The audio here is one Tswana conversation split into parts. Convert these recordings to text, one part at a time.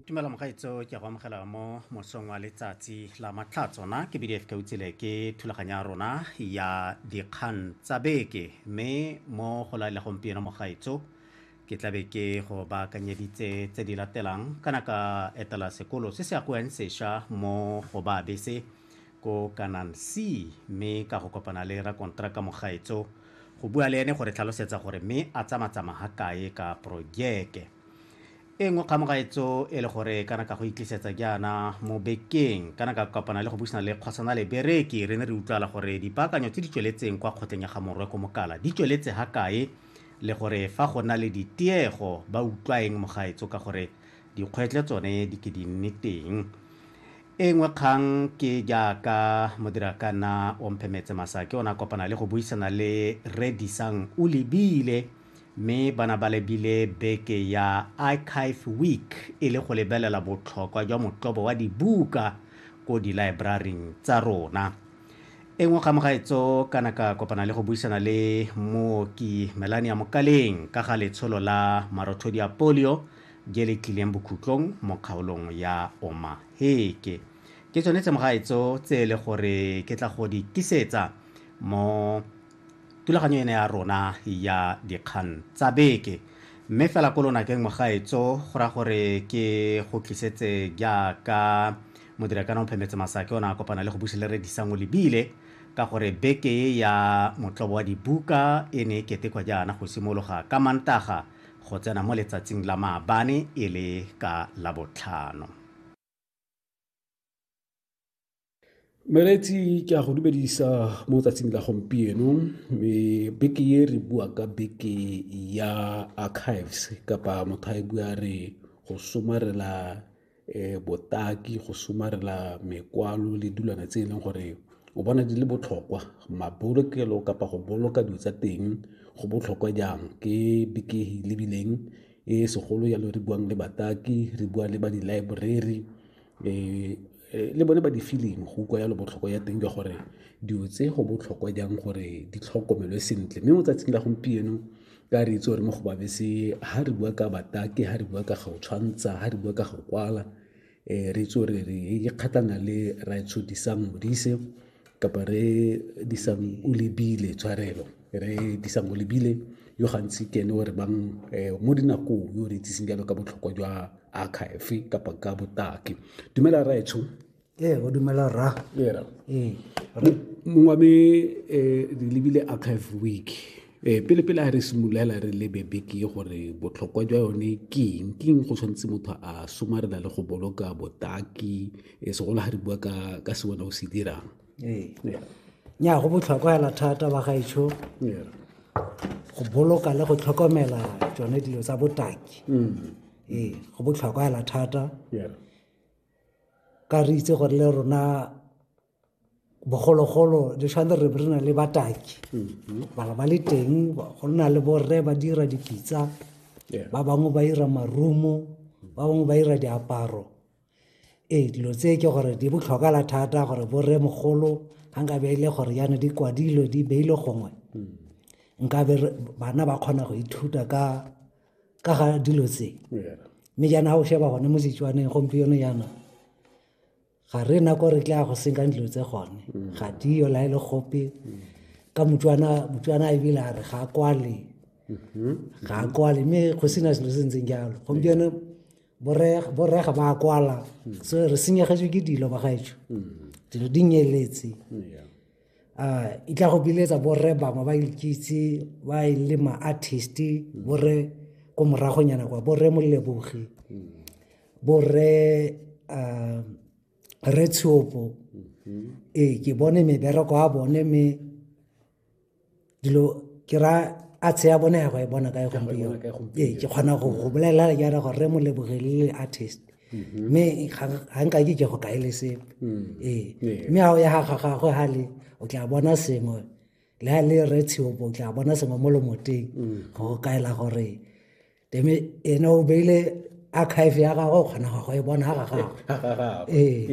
tumela mogaetso ke go amogela mo mosong wa letsatsi la matlha tsona ke bdf ka utsele ke thulaganya ya rona ya dikgang tsa beke mme mo go la le gompieno mogaetso ke tlabe ke go baakanyeditse tse di latelang kana ka etela sekolo se se akoeng sešwa mo go ba bese ko Canaan Sea mme ka go kopana le rakonteraka Mogaetso go bua le ene go re tlhalosetsa gore mme a tsamatsama ha kae ka projeke e nngwe kga Mogaetso e le gore kana ka go itlisetsa jaana mo bekeng kana ka kopana le go busana le kgosana le bereki re ne re utlwala gore dipaakanyo tse di tsweletseng kwa kgotleng ya ga morwe ko mokala di tsweletse ha kae le gore fa go na le ditiego ba utlwa eng Mogaetso ka gore dikgwetlho tsone di ke di nne teng E nngwe kgang ke jaaka Modirakana Omphemetse Masake o ne a kopana le go buisana le Rre Disang Olebile mme ba na ba lebile beke ya Archive Week e le go lebelela botlhokwa jwa motlobo wa dibuka ko dilaebraring tsa rona. E nngwe ga mogaetso ka na ka kopana le go buisana le Mooki Melania Mokaleng ka ga letsholo la marothodi a polio je le tlileng bokhutlong mo kgaolong ya omaheke ke tsone tse mogaetso tse e le gore ke tla go di tisetsa mo tulaganyo ene ya rona ya dikgang tsa beke mme fela ko lonakeng mogaetso go ra gore ke go tlisetse jaaka modirakana o phemetse masake o ne a kopana le go buse le redisang o lebile ka gore beke e ya motlobo wa dibuka e ne e ketekwa jaana go simologa ka mantaga go tsena mo letsatsing la maabane e le ka Labotlhano. Meretsi ke a go dumedisa mo tsatsing la gompieno me beke ye re bua ka beke ya archives kapa motho a e bua re go somarela um botaki, go somarela mekwalo le dilwana tse e leng gore o bona di le botlhokwa. Mabolokelo kapa go boloka dilo tsa teng go botlhokwa jang, ke lebileng e segolo jalo re buang le bataki, re bua le ba di-library le bone ba di-film go utlwa jalo botlhokwa jwa teng jwa gore dilo tse go botlhokwa jang gore di tlhokomelwe sentle. Mme mo tsatsing la gompieno ka re itse gore mo go babese ha re bua ka batake ha re bua ka ga o tshwantsha ha re bua ka ga o kwala um re itse gore re ikgatlhana le raetsho disang modise kapa re disang o lebile tshwarelo re disang o lebile yo gantsi ke ene o re bang um mo dinakong yo re itseseng jalo ka botlhokwa jwa archive kapa ka botaki dumela raetsho ee o dumela ra era ee mongwe me eh, re lebile archive week eh, pele pele a re simololela re lebe beke ye gore botlhokwa jwa yone ke eng ke eng go tshwanetse motho a somarela le go boloka botaki eh, segolo ga re bua ka ka se wena o se dirang ee nya go botlhokwa hela thata ba gaetsho go boloka le go tlhokomela tsone dilo tsa botaki mm. ee go botlhokwa hela thata ka re itse gore le rona bogologolo di tshwanetse re re na le bataki mm-hmm. bala ba le teng go nna le borre ba dira dipitsa ba bangwe ba dira marumo ba bangwe ba dira diaparo ee dilo tse ke gore di botlhokala thata gore borre mogolo ga nka be e le gore yana di kwadilwe di beile gongwe mm. nkabe bana ba kgona go ithuta ka ka ga dilo tse mme jaana o sheba gone mo setswaneng gompieno jaana ga re na kore tla go senkang dilo tse gone mm. ga dio la e le gope mm. ka motswana motswana e bile a re ga kwale mm-hmm. ga kwale mme go sena selo se ntseng jalo gompieno borega ba kwala mm. so re senyegetswe ke dilo ba gaetsho dilo di nyeletse uh, e tla go biletsa borre bangwe ba ikitse ba e le ma-artist borre ko moragonyana kwa borre molebogi borre uh, re tshopo mm-hmm. ee ke bone mebereko a bone me dilo ke ra a tshea bone ya go e bona kae gompieno ee ke kgona go go bolelela ke ara gore re mo lebogelele artist mm-hmm. mme ga nka ke ke go kae le sepe mm. ee mme ga o ya ga gagwe ga le o tla bona sengwe le ga le re tsheopo o tla bona sengwe mo lomoteng mm. go kaela gore ene o beile archive ya gagwe o kgona go e bona ga gagwe ee.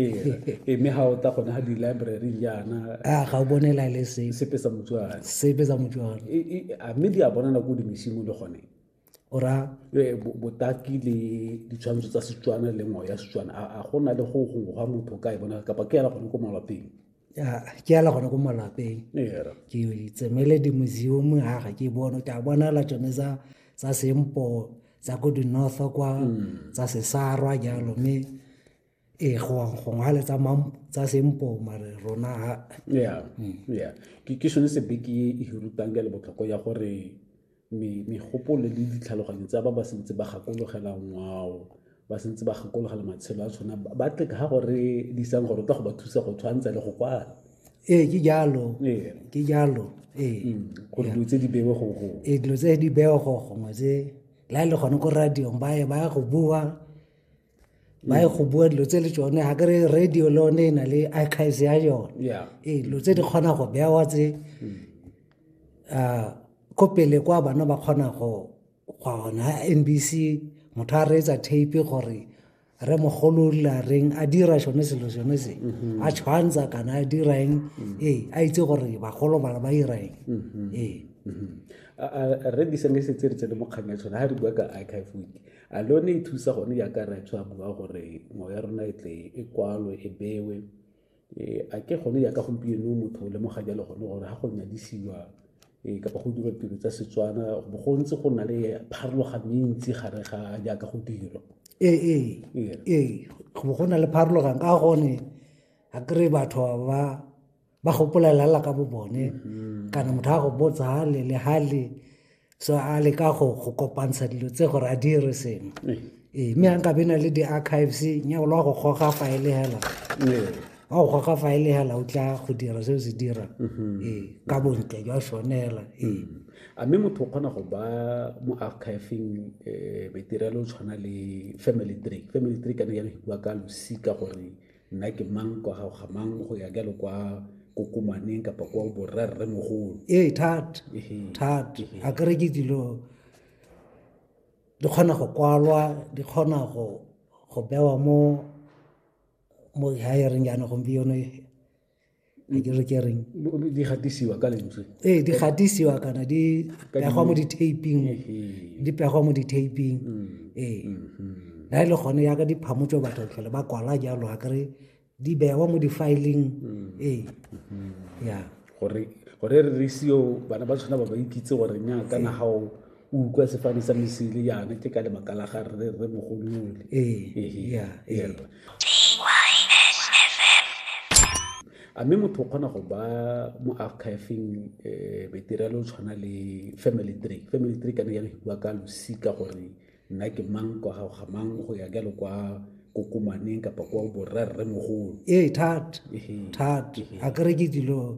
ee, mme ga o ta gone ga di-library jaana a ga o bone la le se sepe sa motswana sepe sa motswana a mme di a bona nako dimesimo le gone o ra e, botaki le ditshwantsho tsa setswana le ngwao ya setswana a go na le go gongwe ga motho ka e bona kapa ke yana gone ko malwapeng ke ala gone ko malapeng ke tsemele di-museum ga ga ke bone ke a bonala tsone tsa sempo tsa ko di-north kwa mm. tsa sesarwa jalo mme ee gongwe le tsa sempo mare rona ya mm. ke sone sebeke e hirutang ka le botlhoko ya gore megopolo le ditlhaloganyo tsa ba ba sentse ba gakologela ngwao ba sentse ba gakologela matshelo a tshwana ba tleka ga gore di isang gore tla go ba thusa go tshwantsha le go kwala ee ke jalo ke jalo ee mm, gore dilo tse di bewe go go ee dilo tse di bewe go gongwe tse la e le gone ko radiong ba ye ba ya go bua ba ye go bua dilo tse le tsone ga kere radio le one e na le archives ya yone ee dilo tse di kgona go bewa tse mm. ah, ko pele kwa bana ba kgona go gwa ona n b c motho a reetsa tape gore re mogolo la reng a dira sone selo sone se mhm. a tshwantsha kana a dira eng mhm. ee a itse gore bagolo bana ba dira eng mhm. ee re di sene se tse re tsene mo kgang ya tshwana ga re bua ka archive week a le yone e thusa gone jaaka re tswa bua gore ngwao ya rona e tle e kwalwe e bewe e, a ke gone jaaka gompieno motho o lemoga jalo gone gore ga go nyadisiwa e, kapa go dirwa tiro tsa setswana bo go ntse go na le pharologano e ntsi gare ga jaaka go dirwa ee ee ee, ee. go na le pharologano ka gone a kry batho ba ba gopolelela ka bo bone mm-hmm. kana motho a go botsa hale le hale so a le ka go go kopantsha dilo tse gore a dire sengwe ee eh. eh, mme a nkabe na le di-archives nyao le wa go goga faele hela eh. wa go goga faele hela o tla go dira se o se dira mm-hmm. ee ka bontle jwa sone hela ee mm-hmm. a mme motho o kgona go ba mo archiving um maitirelo o tshwana le family tree family tree ka ne ya go bua ka losika gore nna ke mang kwa gago ga mang go ya jalo kwa kokomaneng kapa kwa borrerre mogolo ee thata thata a kere ke dilo di kgona go kwalwa di kgona go go bewa mo mo hiring jaana gompieno a ke re ke reng di gatisiwa ka lentswe ee di gatisiwa kana di pegwa mo di-taping di pegwa mo di-taping mm. ee na mm-hmm. e le gone yaka diphamo tso batho tlhole ba kwala jalo a kere di bewa mo di-filing mm. ee mm-hmm. ya gore gore re re seo bana ba tshwana ba ba ikitse gore nya kana gao o utlwa sefane sa mesile yana ke ka lebaka la ga re re mogolole a mme motho o kgona go ba mo archiveng um material o tshwana le family tree family tree kana jalo bua ka losika gore nna ke mang kwa gago ga mang go ya jalo kwa kokomaneng kapa kwa borrerre mogolo ee thata thata a kere ke dilo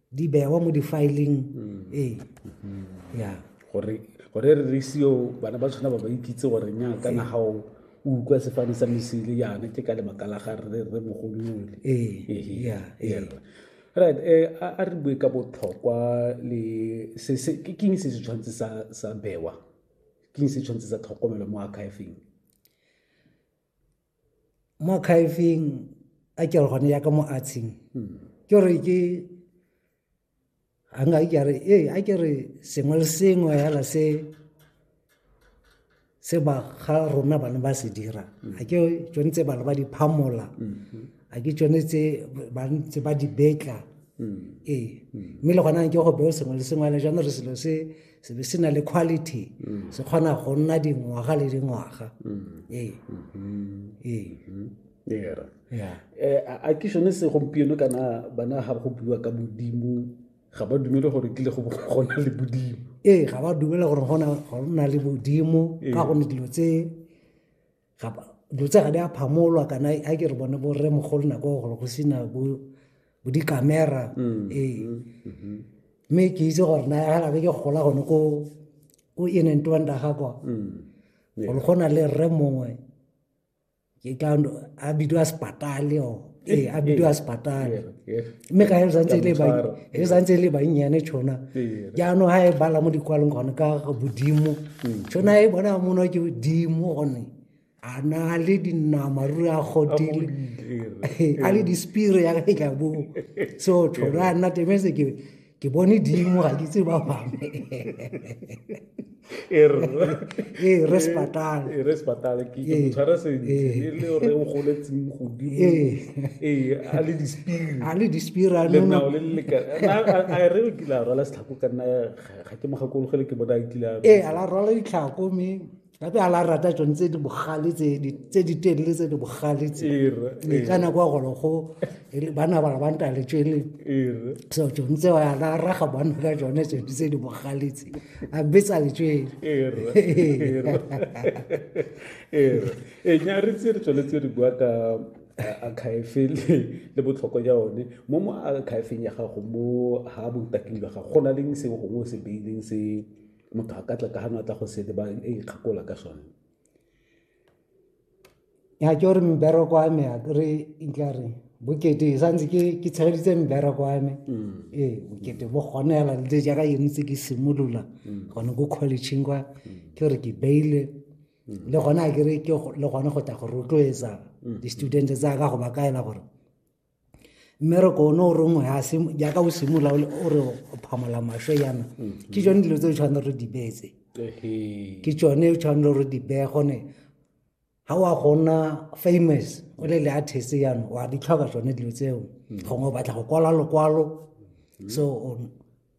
di bewa mo difaeleng mm. ee mm-hmm. ya gore gore re re seo bana ba tshwana ba ba ikitse gore nya ka na hao o utlwa sefane sa mesele yana ke ka lebaka la ga re re mogolole ee ya ya right eh a re bue ka botlhokwa le se se ke king se se tshwantse sa sa bewa king se tshwantse sa tlhokomelo mo archiving mo khaefeng a ke gone ya ka mo atsheng hmm. ke gore ke a nka ke re ee a ke re sengwe le sengwe fela se se ba ga rona bana ba se dira hmm. a ke tsone tse bana ba di phamola hmm. a ke tsone tse ba ntse ba di betla ee mme le gona ke go beo sengwe le sengwe fela jaanong re selo se se be se na le quality mm. se kgona go nna dingwaga le dingwaga mm. ee mm-hmm. ee mm-hmm. era eh, a ke sone segompieno kana bana ga go bua ka modimo ga ba dumele gore kile go gona le modimo ee ga ba dumele gore go na le modimo ee. ka gone dilo tse dilo tse ga di a phamolwa kana a ke re bone bo rre mogolo nako ya gore go sena bo di-camera mm, ee mm, mm-hmm. mme ke itse gore na ga labe ke gola gone ko ko in and twanda ga kwa mm, gore go na le rre mongwe ke ka a bidiwa sepatale o ee a bidiwa sepatane mme ka e santse e le bannyane tšhona jaanong ga e bala mo dikwalong gone ka bodimo tšhona e bona mono ke bodimo gone a na le dinama ruri a godile a le dispire ya ka e ka boo so tšhona a nna temese ke ke bone dimo ga ke tse ba bangwe e re ee, re sepatale ee, re sepatale ke ee, motshware sentle e le re o goletseng godimo ee a le dispiri a le dispiri a le nao le le ka a re o kile a rwala setlhako ka nna ga ke mo gakologele ke bona a kile a ee a la rwala ditlhako mme ba be a la rata tsone tse di bogale tse di- tse di telele tse di bogale tse Ere, Ee, ka nako ya golo go e re bana ba ba nta le tswele ere so tsone tse wa la raga bana ka tsone tse di- tse di bogale tse a betsa le tswele ere ere ere e nya re tse re tsweletse re bua ka a- akhaefe le le botlhokwa ja one mo mo akhaefeng ya gago mo ha botaking jwa gago go na leng seo gongwe o se beileng se motho a ka tla ka gano a tla go sete ba e ikgakola ka sone ya ke gore mbereko wa me re nkla re bokete e santse ke ke tshegeditse mbereko wa me mm. ee bokete bo gone fela le jaaka yone tse ke simolola mm. gone ko collegeng kwa mm. ke gore ke beile le gone a kere ke le gone go tla go rotloetsa di-student tsa ka go ba kaela gore mmereko one o rongwe jaaka o simolola o re o phamola maswe yana mm-hmm. ke tsone dilo tse o tshwanele re di beetse ke tsone o tshwanele re di beye gone ga wa gona famous o le le artist yano wa di tlhoka tsone dilo tseo mm-hmm. gongwe o batla go kwala lokwalo mm-hmm. so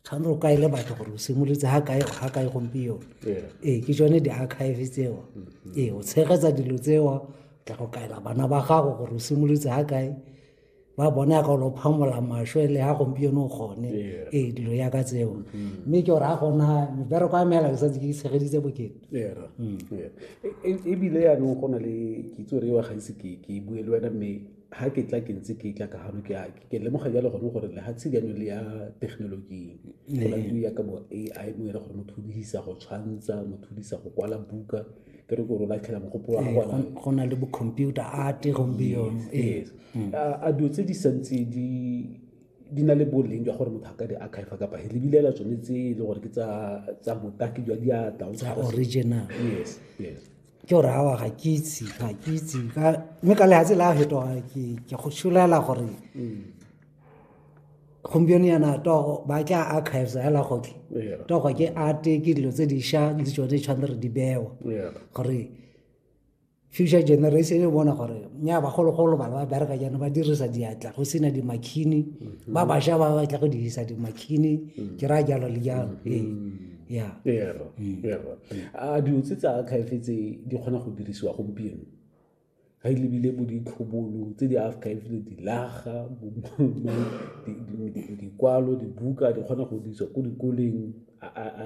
tshwanetse o kaele batho gore o simolotse ga kae ga kae gompieno ee ke tsone di-archive tseo mm-hmm. ee o tshegetsa dilo tseo tla go kaela bana ba gago gore o simolotse ga kae ba bona ka lo phamola masho le ha gompieno o gone ee dilo ya ka tseo mm-hmm. mme ke gore a gona mebereko ya meela ke santse ke tshegeditse bokete mm. e, e, ebile yaanong go na le kitso re wa gaise ke bue le wena mme ga ke tla ke ntse ke tla ka gano ke ke lemoga jalo gone gore lehatshe jaanong le ya thekenoloji go na le ya ka bo a i mo ere gore motho o dirisa go tshwantsha motho o dirisa go kwala buka ke re gore o latlhela mogopolo wa gona go na le bo-computer art gompieno yes mm. a dilo tse di santse di di na le boleng jwa gore motho a ka di archive kapa he lebilela tsone tse e le gore ke tsa botaki jwa diatla original yes yes ke gore awa ga ke itse ga ke itse mme ka lehatshe la fetoga ke go solela gore mm. gompieno yana togo ba tla archives hela goke togo ke arte ke dilo tse dišwa le tsone di tshwanetse re di bewa gore future generation e bona gore nya bagologolo bana ba bereka jaana ba dirisa diatla go sena dimakhini mm-hmm. ba bašwa ba batla go dirisa dimakhini mm. ke raya jalo le jalo mm-hmm. ee a dilo tse tsa archive tse di kgona go dirisiwa gompieno ga e lebile bo ditlhobolo tse di archive le dilaga dikwalo dibuka di kgona go dirisiwa ko dikoleng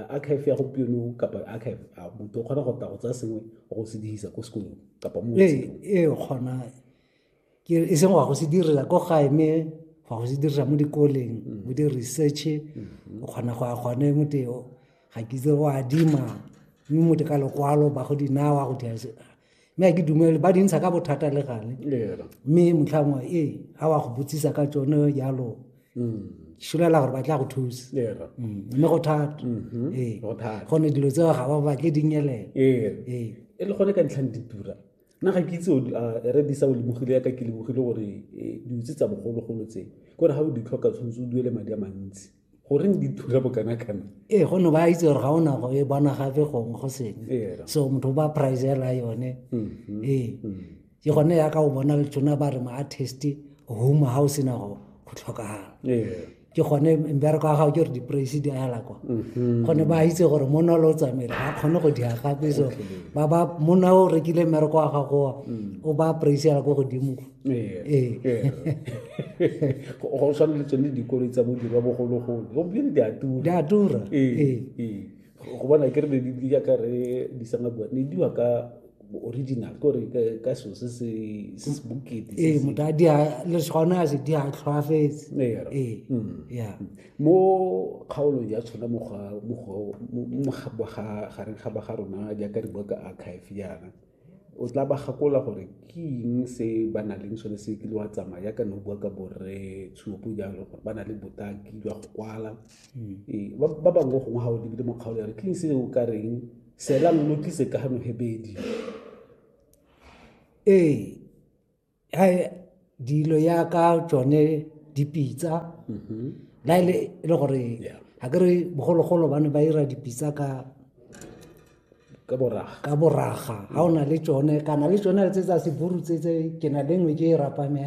archive ya gompieno kapa archive a motho o kgona go tla go tsaya sengwe go se dirisa ko sekolong kapa mo ee, ee kgona ke e seng wa go se direla ko gae mme wa go se dirisa mo dikoleng mm. mo di-research mm-hmm. o kgona go ya gone mote ga ke itse go adima mme mote ka lokwalo ba go dinawa go dira mme a ke dumele ba dintsha ka bothata le gale mme motlhangwe ee ga wa go botsisa ka tsone jalo mm. šolela gore ba tla go thusa mm. mme go thata mm-hmm. ee gone dilo tseo ga ba batle dinyelela ee. ee. e le gone ka ntlhang ditura nna ga ke itse re disa o lebogile yaka ke lebogile gore eh, diutse tsa bogologolo tse kore ga o di tlhoka tshwanetse o duele madi a mantsi goreng di thula bokanakana ee gonne ba itse gore ga o nago e bona gape gongwe go sengwe ee, so motho o ba pricela yone mm-hmm. ee mm-hmm. ke gone yaka o bona tsona ba re ma-artist home ga o sena go tlhokagala ee. ke gone mbereko wa gago ke gore di-praise di ala kwa mhm. gone ba itse gore monna o le o tsamaile ga kgone go dia gape so ba ba monna o rekile mmereko wa gagowa mm. o ba praise ala ko godimo ee. Ee. go tshwana le tsone dikolo tsa bodirwa bogologolo gompieno di a tura di a tura ee. go bona ke re ne di yaka re di sanga bua ne diwa ka original ko re ka ka so se se se se bokete se ee se- motho a di a le gone a se di a tlhoafetse Ee, ra- ee Mm. ya mo kgaolong ya tshwana mo ga- mo go- mo- mo ga- ba ga- gareng ga ba ga rona jaaka re bua ka archive yana o tla ba gakola gore ke eng se ba na leng sone se kile wa tsamaya yaka ne o bua ka borre tshuopo jalo gore ba na le botaki jwa go kwala Ee, ba ba bangwe gongwe ga o lebile mo kgaolo ya re ke eng se o ka reng sela lo tlise ka gano hebedi ee ha dilo ya ka tsone dipitsa mm-hmm. la ile e le gore ga ke re bogologolo ba ne ba ira dipitsa ka ka boraga ka boraga ga o na le tsone kana le tsone tse tsa seburu tse tse ke na le nngwe ke e rapame